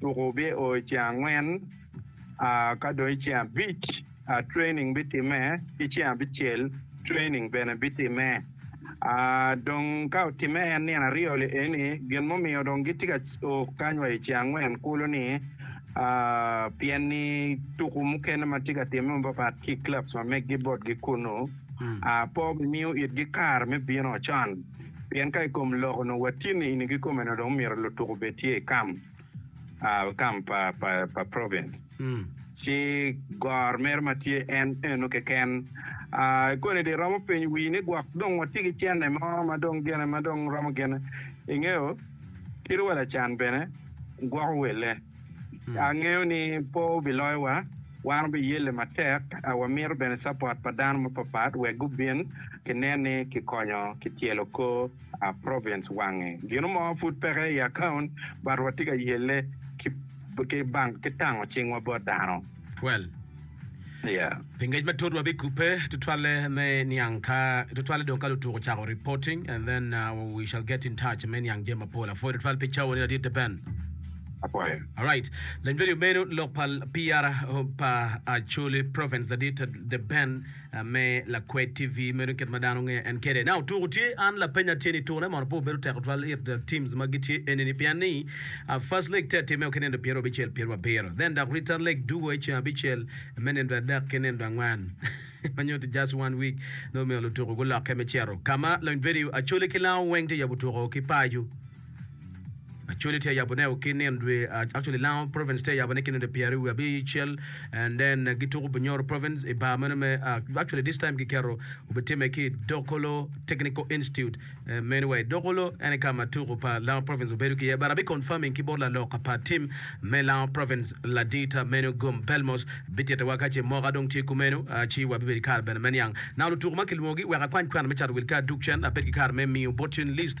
Tuku bio i ceng angwen, ka dong i ceng abic training bitimme, ki ceng abicel training bene bitimme. Dong ka otimme en nino aryo li eni, gin mumiyo dong gitye ka o kany wa i ceng angwen kulu-ni pien ni tuku mukene ma tye ka timme mapapat ki clubs ma meggi botgi kunu, pe obimiyo itgi kare me bino con. Pien ka i kom lok onongo watye niini kikomeno dong omyero lutuk obed tye i kam, kam pa province, ci gor mere ma tye en eno keken. I koni dong iromo penyo wii ni gwok dong watye ki cene mo ma dong gene ma dong romo gene, ingeyo, kit wa lacan bene gwoko welle. Angeyo ni po biloyowa. Wan wubiyelle matek. Wamito bene capot pa dano mapatpat wek gubin kinen ni kikonyo kityelo kor province wange. Gino mo pud peke i akaunt but watye ka yelle ki tango cingwa bot dano. 12. Yeah. Pi ngec matut wabikubbe tutwalle me niang ka tutwalle dong ka lutuko cako reporting and then uh, we shall get in touch me niang jami mapol. Apwoyo tutwal pi cawa ni ladit de Ben. Apwoyo. Alright. Lanyodi omenu lok pa PR pa Acholi Province ladit de Ben me lakwed TV meno kit ma dano ngeyo en kede. Na otuko tye an lapenya tye ni tune mono pe obedo tek tutwal it teams ma gitye eni ni pien ni uh, first leg te atime ki nindo pyero abicel pyero abiro then dok return leg dugo i ceng abicel me nindo adek ki nindo angwen ma nyuto just one week nongo omiyo lutuko gulokke me cito kama loin venue acoli ki lango weng te yabo tuko ki paco. Actually tye yabo ne ki nino dwe actually Lango province tye yabo ne ki nino pyeri wi abicel and then gi tuku Bunyoro province i bar meno me uh, actually this time ki keto obi time ki Dokolo Technical Institute um, anyway Dokolo ene ka ma tuku pa Lango province obedo ki ye but abi confirming ki bot laloka pa team me Lango province Ladita meno Gum Belmos bitite wa ka ce moka dong tye kumeno uh, ci wa bibedo kare bene me niang nang lutuku ma kilwongo gi wek akwany kwana me cato wil ka duk cen abed ki kare me miyo bottin list